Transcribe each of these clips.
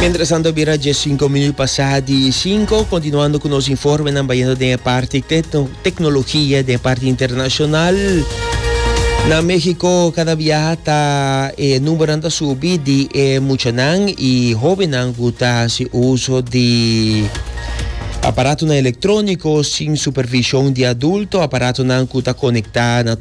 Mientras tanto bira dje sinku minuut pasá di sinku kontinuando ku nos informenan bayendo den e parti teknologia den e parti internashonal. Na México kada bia ta e numbernan ta subi di e muchanan i hóbennan ku ta hasi uso di aparatonan elektróniko sin supervishon di adulto, aparatonan ku ta konektá na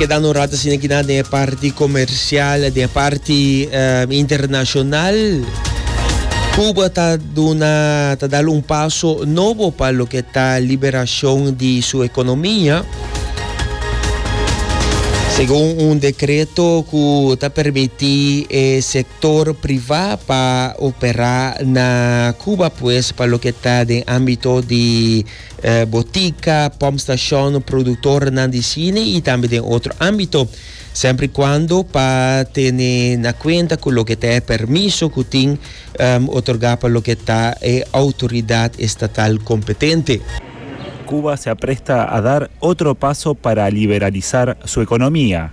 Keda no rato asina kina den e parti comercial, den e parti um, internacional. Cuba ta duna, ta dal un paso nobo pa lo que ta liberacion di su economia. Segun un decreto cu ta permiti e sector sector priva pa opera na Cuba pues pa loke ta den ambito di botica, pump station, productornan di cine y tambe den otro ambito. Semper y cuando pa tene na cuenta cu loke ta e permiso cu tin otorga pa loke ta e autoridad estatal competente. Cuba se apresta a dar otro paso para liberalisar su economia.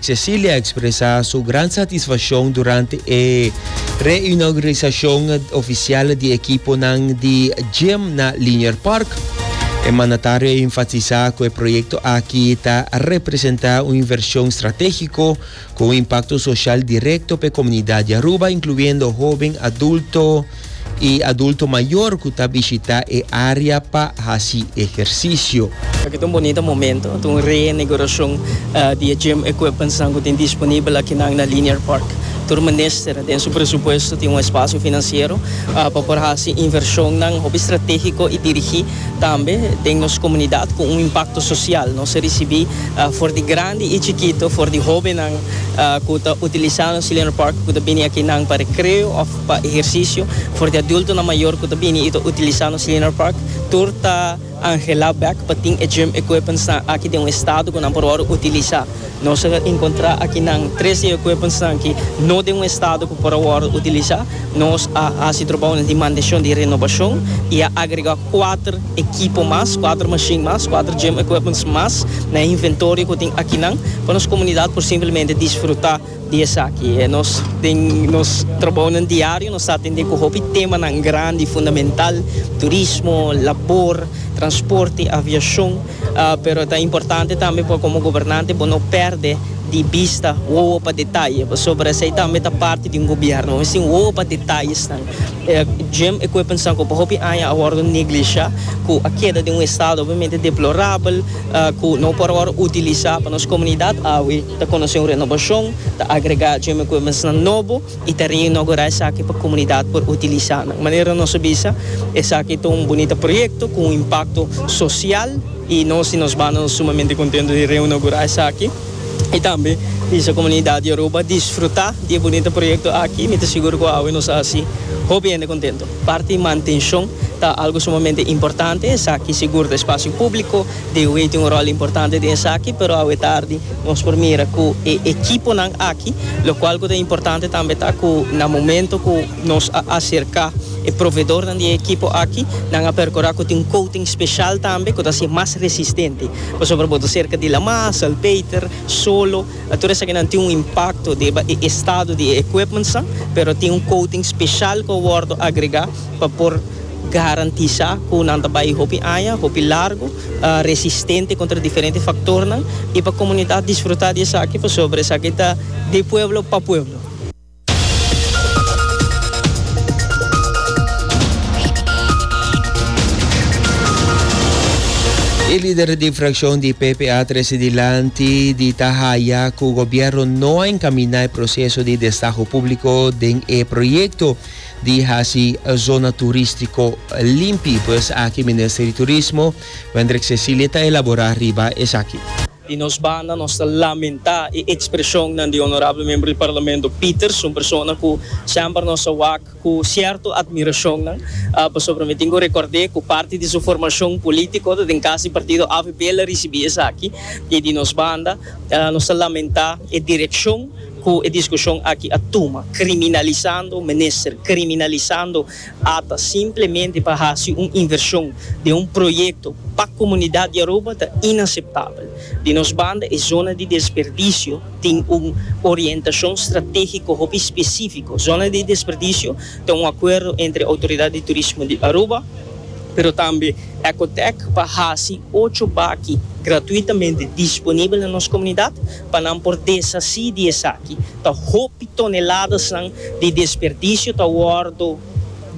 Cecilia expresa su gran satisfaccion durante e reinauguracion oficial di ekiponan di gym na Linier Park. E mandatario a enfatisa cu e proyecto aki ta representa un inversion strategico cu un impacto social directo pa e comunidad di Aruba, incluyendo hoben, adulto, i adulto mayor cu ta bishita e area pa haci ehercicio. Aki ta un bonita momento, ta un reinaguracion di e gym equipmentsnan cu tin disponibel akinan na Linear Park. Tur minister den su presupuesto tin un espacio financiero pa por haci inversionnan hopi strategico i dirigi tambe den nos comunidad cu un impacto social. Nos a ricibi for di grandi i chikito, for di hobennan cu ta utilisa nos Linear Park cu ta bini akinan pa recreo of. Pa ehersisio for di adulto na mayor cu ta bini y ta utilisa nos Lienert Park tur ta angela bek pa tin e gym equipmentsnan aki den un estado cu nan por worde utilisa. Nos a encontra aki nan tres di e equipmentsnan ki no den un estado cu por a worde utilisa. Nos a haci trabounan di mantencion di renobacion y a agrega cuater ekipo mas, cuater machine mas, cuater gym equipments mas na e inventorio cu tin aki nan pa nos comunidad por simplemente disfruta. Di esaki e nos den nos trabounan diario nos ta atendé ku hopi temanan grandi, fundamental, turismo, labor, transporte, aviashon, pero ta importante tambe pa komo gobernante bo no pèrdè di bista wowo pa detaye, pasobra esei tambe ta parti di un gobièrnu. Mi sin wowo pa detayesnan, gym equipmentsnan ku pa hopi aña a wòrdu neglishá, ku a keda den un estado obviamente deplorabel, ku no por awor utilisá pa nos komunidat awe. Ta konosé un renobashon, ta agregá gym equipmentsnan nobo i ta reinogurá esaki pa komunidat por utilisá nan. Manera nos a bisa, esaki ta un bunita proyekto ku un impakto sosial i nos di nos banda nos sumamente kontentu di reinogurá esaki i tambe bisa komunidat di Aruba disfrutá di e bunita proyekto aki. Mi ta sigur ku awe nos a hasi hopi hende kontentu. Parti mantenshon ta algu sumamente importante. Esaki sigur ta espasio públiko. De Wee tin un rol importante den esaki, pero awe tardi nos por mira cu e ekiponan aki, locual cu ta importante tambe ta cu na momento cu nos a acerca e proveedornan di e ekipo aki, nan a percura cu tin un coating special tambe cu ta haci'e mas resistente. Pasobra bo ta cerca di Lamar, Salpeter, Solo, tur esakinan tin un impacto riba e estado di e equipmentsnan, pero tin un coating special cu a wordo agrega. pa por garantisá ku nan ta bai hopi aña, hopi largu, resistente kontra diferente faktornan i pa komunidat disfrutá di esaki pasobra esaki ta di pueblo pa pueblo. E lider di frakshon di PPA trese dilanti di ta haya ku gobièrnu no a enkaminá e proseso di destaho públiko den e proyekto. di hasi e zona turístiko limpi. Por esaki Minister di Turismo, Wendrick Cecilie ta elaborá riba esaki. Di nos banda nos ta lamentá e ekspreshonnan di Onorabel Membro di Parlamento Peters, un persona ku semper nos a wak ku sierto atmirashonnan, pasobra mi tin ku rekòrd'é ku parti di su formashon polítiko ta den kas di partido avp el a risibí esaki. I di nos banda nos ta lamentá e direkshon. Cu e discusion aki a tuma, criminalisando minister, criminalisando ata simplemente pa haci un inversion den un proyecto pa comunidad di Aruba ta inaceptabel. Di nos banda e zona di desperdicio tin un orientacion strategico hopi specifico. Zona di desperdicio ta un acuerdo entre Autoridad di Turismo di Aruba, pero tambe Ecotec pa haci ocho baki gratuitamente disponibel na nos comunidad, Pa nan por deshací di esaki, ta hopi toneladasnan di desperdisio ta wòrdu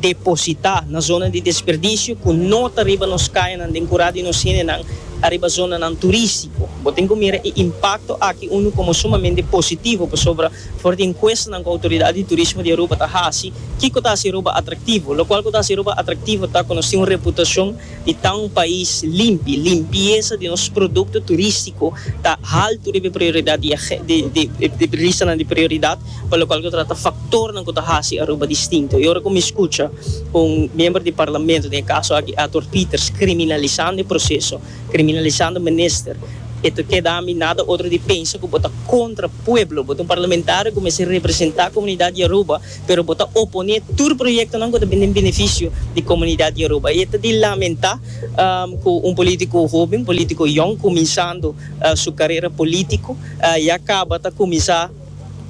depositá na zona di desperdisio ku no ta riba nos kayanan den kurá di nos hendenan ariba zonanan turístiko. Bo tin ku mira e impakto aki unu komo sumamente positivo pasobra for di enkuestanan ku Outoridat di Turismo di Aruba ta hasi, kiko ta hasi Aruba atraktivo? Lokual ku ta hasi Aruba atraktivo ta ku nos tin un reputashon di ta un pais limpi. Limpiesa di nos produkto turistiko ta haltu riba e prioridat di e ristanan di prioridat pa lokual ku ta trata faktornan ku ta hasi Aruba distinto. E ora ku mi skucha un miembro di parlamento, den e kaso aki Ator Pieters, kriminalisando e proseso, kriminalisando minister, e ta keda mi nada otro di pensa ku bo ta kontra pueblo. Bo ta un parlamentario ku mester representá komunidat di Aruba. pero bo ta oponé tur proyektonan ku ta bin den benefisio di komunidat Yoruba. I e ta di lamentá ku un polítiko hoben, polítiko yòn, kuminsando su karera polítiko, ya kaba ta kuminsá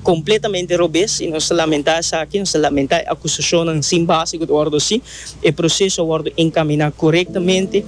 kompletamente robes. I nos ta lamentá esaki, nos ta lamentá e akusashonnan sin base ku ta wòrdu hasi. E proseso a wòrdu enkaminá korektamente.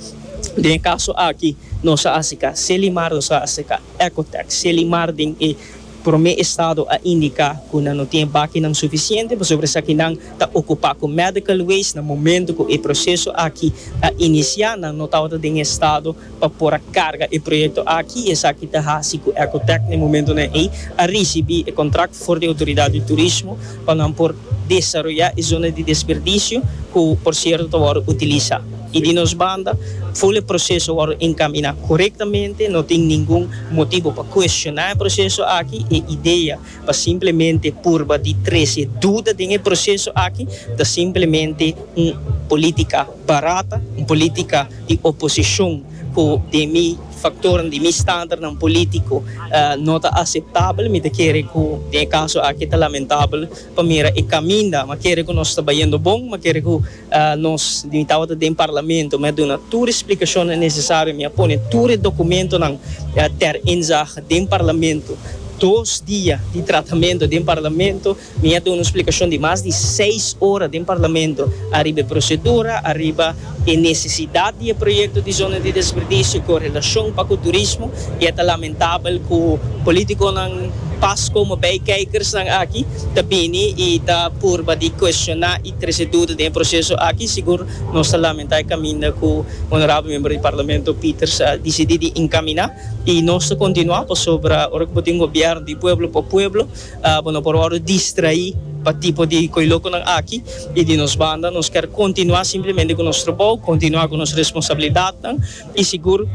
Den e kaso aki nos a aseká Selimar, nos a aseká Ecotex, Selimar den e. Prome estado a indica cu nan no tin bakinan suficiente pasobra esaki nan ta ocupa cu medical waste. Na momento cu e proceso aki a inicia nan no tabata den estado pa por a carga e proyecto aki. Esaki ta haci cu Ecotec na e momentonan ey a ricibi e contract for di Autoridad di Turismo pa nan por. desaroyá e zona di desperdisio ku por sierto ta wòrdu utilisá i di nos banda ful e proseso wòrdu enkaminá korektamente, no tin ningun motibu pa kuestioná e proseso aki. E idea pa simplemente purba di trese duda den e proseso aki ta simplemente un polítika barata, un polítika di oposishon ku den mi. Faktornan di mi standarnan polítiko no ta aseptabel. Mi ta kere ku den e kaso aki ta lamentabel pa mira e kaminda. Mi a kere ku nos ta bayendo bon. Mi a kere ku nos, mi tabata den parlamento, mi a duna tur e splikashonnan nesesario. Mi a pone tur e dokumentonan ter inzage den parlamento. Dos dia di tratamentu den parlamento. Mi a duna un splikashon di mas di seis ora den Parlamento ariba e prosedura, ariba e nesesidat di e proyekto di zona di desperdisio ku relashon pa ku turismo i a ta lamentabel ku politikonan pas komo bei kijkersnan aki ta bini i ta purba di kuestioná i trese duda den e proseso aki. Sigur nos ta lamentá e kaminda ku Honorabel Member di Parlamento Peters a disidí di enkaminá i nos ta kontinuá pasobra ora ku bo tin un gobièrnu di pueblo pa pueblo, Bo no por wòrdu distraí pa tipo di koilokonan aki. I di nos banda, nos ker kontinuá simplemente ku nos trabou, kontinuá ku nos responsabilidatnan i sigur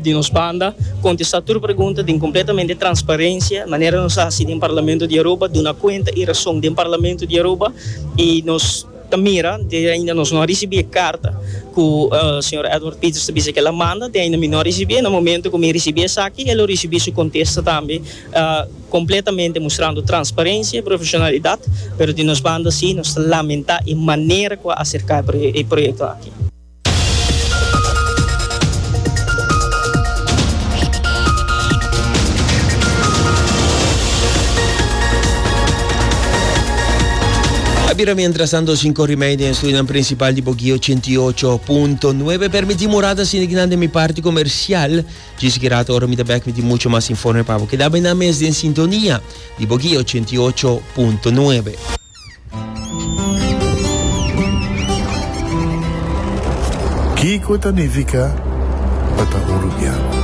di nos banda kontestá tur pregunta den kompletamente transparensia, manera nos a hasi den Parlamento di Aruba, duna kuenta e rason den Parlamento di Aruba. I nos ta mira, te ainda nos no a risibí e karta ku señor Edward Peters ta bisa ku el a manda, te ainda mi no a risibí. Na momentu ku mi risibí esaki, e lo risibí su kontesta tambe. Completamente mustrando transparencia y profesionalidad, pero di nos banda si nos ta lamenta e manera cu a acerca e proyecto aki. A bira mientratanto sin cori mei den estudinan principal di Boguí ochenta i ocho punto nuebe. Permití morada sindi kinan den mi parti comercial. Djis Gerard ora mi ta bek mi tin mucho mas informe pa bo keda bay nan mes den sintonia di bo guia ochenta i ocho punto nuebe. Kiko ta nifica pa ta un rubian?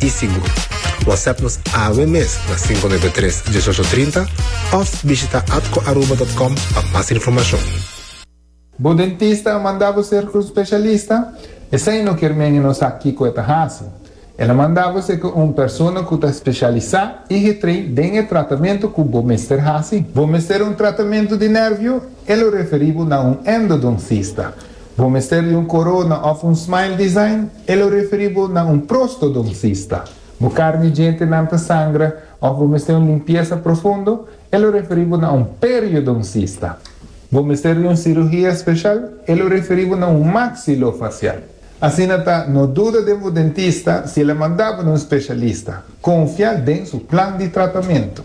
i sigur. WhatsApp nos awe mes na 593 1830 of bishita atcoaruba.com pa mas informacion. Bo dentista a manda bo ser un specialista? Esei no kier men e no sa kico e ta haci. El a manda bo ser cu un persona cu ta specialisa y getrei den e tratamento cu bo mester haci. Bo mester un tratamento di nervio? E lo referi bo na un endodoncista. Bo mester di un corona of un smile design? E lo referi bo na un prostodoncista. Bo carni djentenan ta sangra of bo mester un limpiesa profundo? E lo referi bo na un periodoncista. Bo mester di un cirugia special? E lo referi bo na un maxilofacial. Asina ta, no duda den bo dentista si el a manda bo na un specialista. Confia den su plan di tratamento.